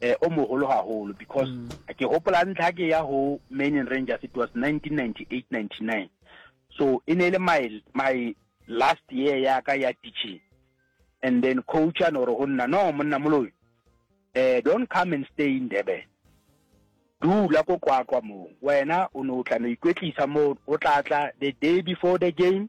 eh, o mogolo gagolo because mm. ke gopola ntlha ke ya go Maine Rangers it was 1998-99 so e ne e le my my last year ya ka ya teaching and then coach a no re go nna no monna moloi eh don't come and stay in Durban dula ko kwakwa moo wena o ne o tla no ikwetlisa moo o tla tla the day before the game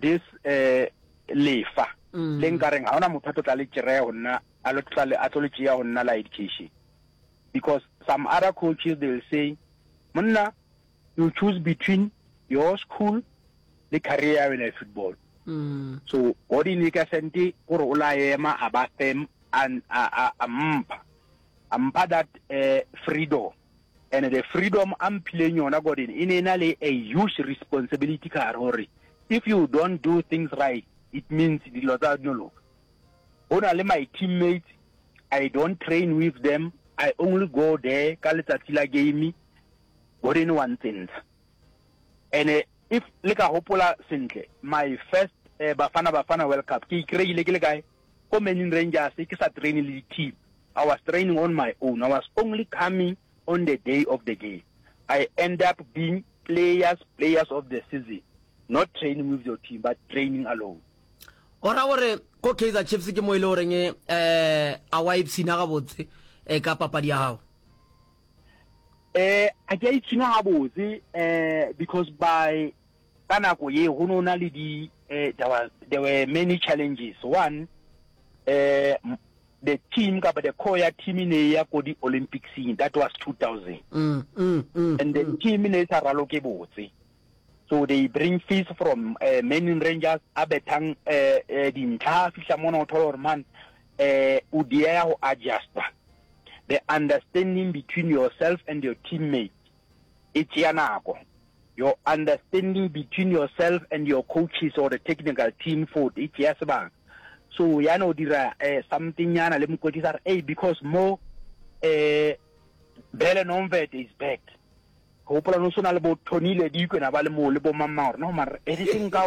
this eh lefa mm. le nkareng ha ona motho a tlotla le tšereye go nna a lo tlotla a tlo le tšeya go nna la education because some other coaches they will say monna you choose between your school le career ya wena ya football mm. so what in ka sente gore o la ema a ba fem a a a mpha a mpha that uh, freedom And the freedom a mphileng yona Gordon e ne ena le a huge responsibility ka gare gore if you don't do things right it means dilo tsa no loka. Go na le my teammates I don't train with them I only go there ka letsatsi la game Gordon wa ntsentsha. And if le ka gopola sentle my first uh, Bafana Bafana World Cup ke ikreile ke le kae ko Manning Rangers ke sa traine le di team, I was training on my own, I was only coming on the day of the game, I end up being players players of the season, not training with your team but training alone. O ra gore ko Kaizer Chiefs ke mo e le goreng eh a wa ipshina gabotse eh, ka papadi ya gago? Eh, a ke a ipshina gabotse eh, because by Ka nako ye go no na le di eh, there, was, there were many challenges one eh, the team kapa the core ya team e ne ya ko di olympicsing that was 2000 mm, mm, mm, and the mm. team e ne e sa ralo ke botse so they bring fees from uh, manin rangers a bethang uh, uh, dintlha a fihla mona o thola gore man uh, o diea go adjusta the understanding between yourself and your teammate e tšea nako. Your understanding between yourself and your coaches or the technical team food e tšea sebaka. So ya no dira eh, something nyana le mokwetlisi a re hey because mo eh Bele Nomvet is back gopola no sona le bo Tony le Dikwe na ba le mo le bo mamma gore no mara everything ka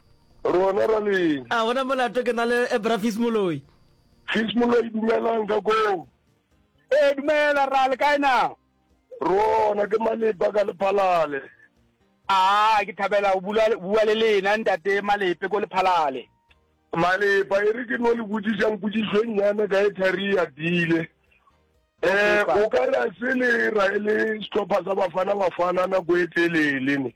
Rona ra leng. A gona molato ke na le eh, Bra Fis Moloi. Fis Moloi dumelang ka koo. E dumela ra le kae na? Rona ke Malepa ka Lephalale. A ke thabela go bua le lena ntate Malepe ko Lephalale. Malepa e re ke no le botsisang potsiso e nnyane ka e thari ya dile. Eh o ka ra se le ra e le setlhopha sa bafana bafana nako e telele ne.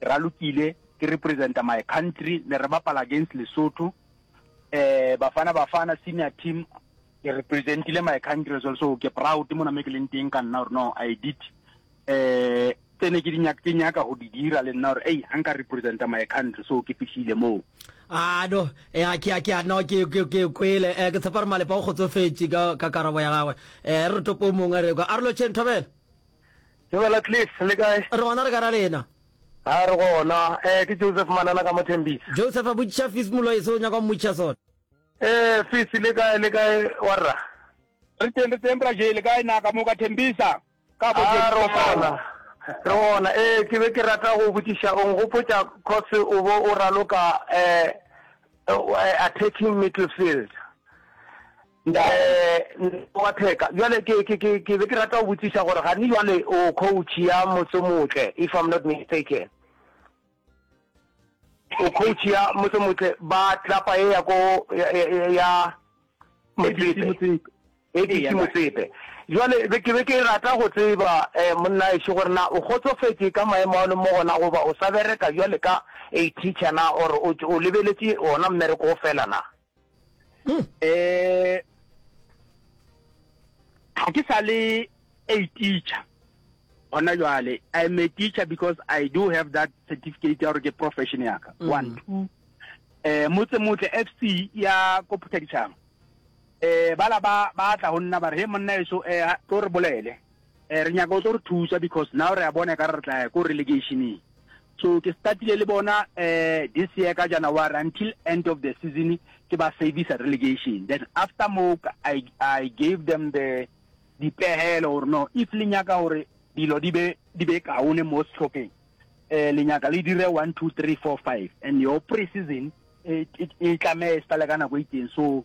Ralokile ke representa my country ne re bapala against Lesotho eh Bafana Bafana senior team ke representile my country as well so ke proud mona me ke leng teng ka nna gore no I did eh tsene ke dinyaka ke nyaka go di dira le nna gore ei ha nka representa my country so ke fihlile moo a no eh, a ke a ke a no ke ke ke kwele eh, ke tshepa re malepa o kgotsofetse ka ka karabo ya gagwe eh re re topo mongwe re kwa a re lo chen thobela Dumela Cliff, le kae? Re gona re ka ra lena. Haa re gona, ee ke Joseph Manana ka mo Tembisa. Joseph a botšiša Fis Moloi seo o nyaka go mmotšiša sona. Ee Fis le kae le kae warra? Re teng re teng bra Jay, le kae na ka mo ka Tembisa? Ka bo Haa re gona, re gona, ee ke be ke rata go botšiša o ngopotša cos o bo o raloka ee attacking midfield. Ntate wa theka, bjale ke, ke, ke, ke be ke rata go botšiša gore gane bjale o coach ya motse motle, if I'm not mistaken. O coach ya motse motle ba tlapa e ya ko ya, ya, ya Motsepe. ABC Motsepe. Jwale be ke be ke rata go tseba eh monna e gore na o gotsofetse ka maemo a le mo gona goba o sa bereka jwale ka a teacher na or o lebeletše ona mmereko fela na? eh ga ke sa le a teacher gona jwale i am a teacher because i do have that certificate ya gore ke profession ya ka mm. one two eh motse motle fc ya ko phuthadišang eh bala ba ba tla go nna ba re he monna eso eh tlo re bolele Eh, re nyaka o tlo re thusa because now re a bona ka re tla ya ko relegationeng. So ke startile le bona eh this year ka January until end of the season ke ba service relegation. Then after mo I I gave them the dipehelo or no if le nyaka hore dilo di be di be kaone mo sehlopeng eh le nyaka le dire 1 2 3 4 5 and your pre-season e tlamee e sale ka nako e itseng so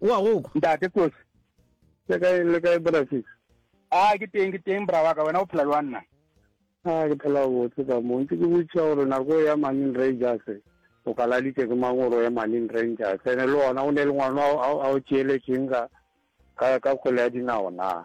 O a go kwa? Ntate Kosi. Le kae le kae bra Sisi? Ah ke teng ke teng bra wa ka wena o phela jwang na? Ah ke phela botse ka mo. Ntse ke botšiša gore nako ya Marine Rangers o kaladitše ke mang gore o ye Marine Rangers. Ene le ona o ne le ngwana a o tšeeletšeng ka ka kgwele ya dinao na?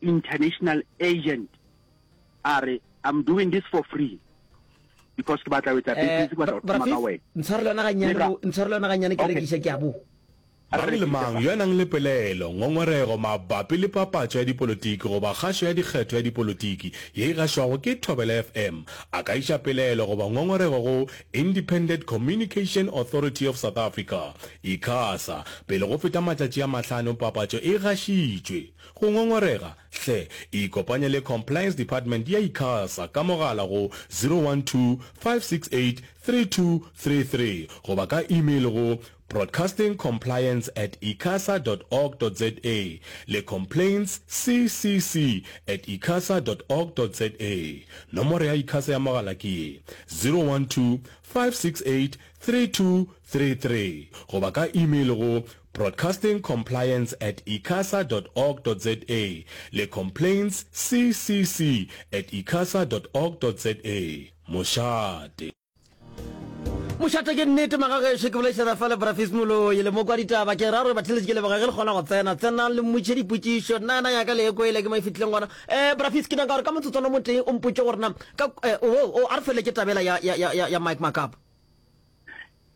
international agent a re I'm doing this for free because ke batla wetsa eh, business ke batla go thoma ka wena ntshwarele yona ganyane ntshwarele yona ganyane ke rekiša ke a bo mang le mang yo a nang le pelaelo ngongorego mabapi le papatso ya dipolotiki goba kgašo ya dikgetho ya dipolotiki ye e gašwago ke thobela fm a ka iša pelaelo goba ngongorego go independent communication authority of south africa icasa pele go feta matšatši a mahlano papatso e gašitšwe Go ngongorega? Hle, ikopanye le Compliance Department ya Icasa ka mogala go 012-568-3233 goba ka email go broadcastingcompliance at icasa dot org dot za le complaints ccc at icasa dot org dot za. Nomoro ya Icasa ya mogala ke ye, 012-568-3233 goba ka email go Broadcasting Compliance at icasa dot org dot za le Complaints CCC at icasa dot org dot za. Mošate. Mošate ke nnete magagešo ke bolaišana fa le brafis moloi le moko wa ditaba ke ra gore batheletše ke leboga ge le kgona go tsena tsenang le mmotše dipotšišo nna yana yaka le ekoele ke mo e fitlhileng gona eh brafis ke nyaka gore ka motsotswana mo teng o mpotše gore na ka eh, o oh, oh, a re fele ke tabela ya, ya, ya, ya, ya mike makapa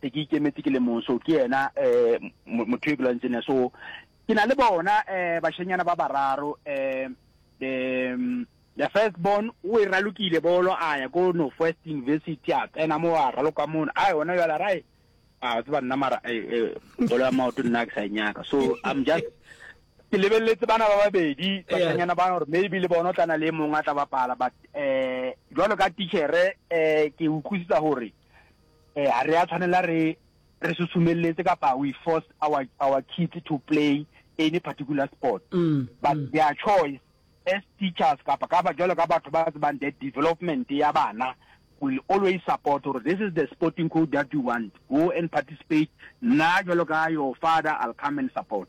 se ke ikemetse ke le mong so ke yena um motho e ke lwantse ne so ke na le bona um bashenyana ba bararo um the the first born o e ralokile bolo a ya ko north west university a tsena mo a raloka mono a yona jala rae a tseba nna mara eh, eh, bolo ya maoto nna ke sa e nyaka so i'm just ke lebeletse bana ba babedi basanyana ba gore maybe le bona o tlana le e mongwe a tla bapala but um jalo ka tichere um ke utlwisisa gore eh, ha re a tshwanela re re susumeletse kapa we force our our kids to play any particular sport mm, but mm. their choice as teachers kapa ka ba jalo ka batho ba tsebang the development ya bana will always support or this is the sporting code that you want go and participate nna jalo ka your father i'll come and support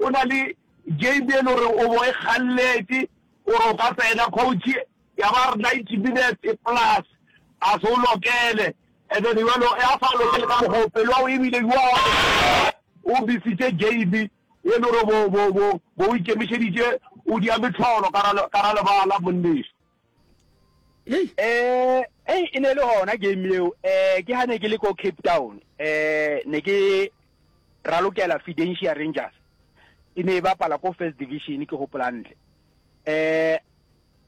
O na le game e le gore o bo e kgalletše gore o ka tsena coach ya ba re ninety minutes plus a se o lokele and then jalo ya sa lokele ka mokgwa o pelo ya go ebile yo o misitše game e le gore bo o ikemišeditše o dia metlholo ka ra lebala monneso Hey. Eh, hey, e ne le hona game leo. Eh, ke hane ke le ko Cape Town. Eh, ne ke ra lokela Fidentia Rangers. E ne e bapala ko First Division ke hopola ntle. Eh,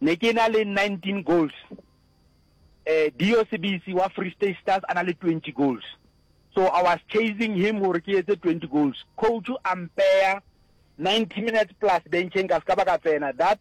ne ke na le 19 goals. Eh, Dio Sibisi wa Free State Stars ana le 20 goals. So I was chasing him hore ke etse 20 goals. Coach ampea 90 minutes plus bencheng ka ska ba ka tsena. That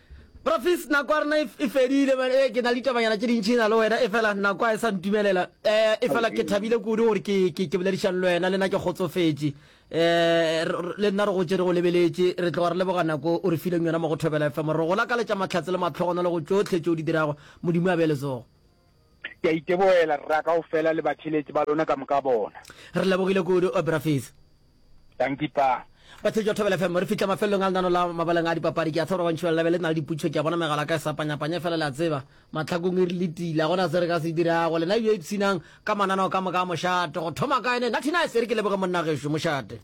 Profis, nako ya rena e, e fedile man, e, ke na le ditabanyana tše dintšhi na le wena, efela nako a e sa ntumelela. E, efela ke thabile kudu gore ke, ke, ke boledišane le wena, le nna ke kgotsofetše. E, le nna re gotše re go lebeletše, re tloga re leboga nako o re fileng yona mo go Thobela FM. Re go lakaletša mahlatse le mahlogonolo go tšohle tše o di dirago. Modimo a be letsogo. Ke a iteboela, rra, ka go fela le batheletši ba lona ka moka bona. Re lebogile kudu, Obrafith. Danki, Pa. Batheletši ba Thobela FM, re fihla mafelelong a lenano la mabaleng a dipapadi. Ke a tseba gore gantši ba lelabe le na le diputšo. Ke a bona megala ka e sapanyapanya, efela le a tseba, mahlakong e re le tile. Ga gona se re ka se dirago. Lena bjo ipshinang ka mananao ka moka a mošate. Go thoma kae ne? Nathinais, e re ke leboge monna gešo, mošate.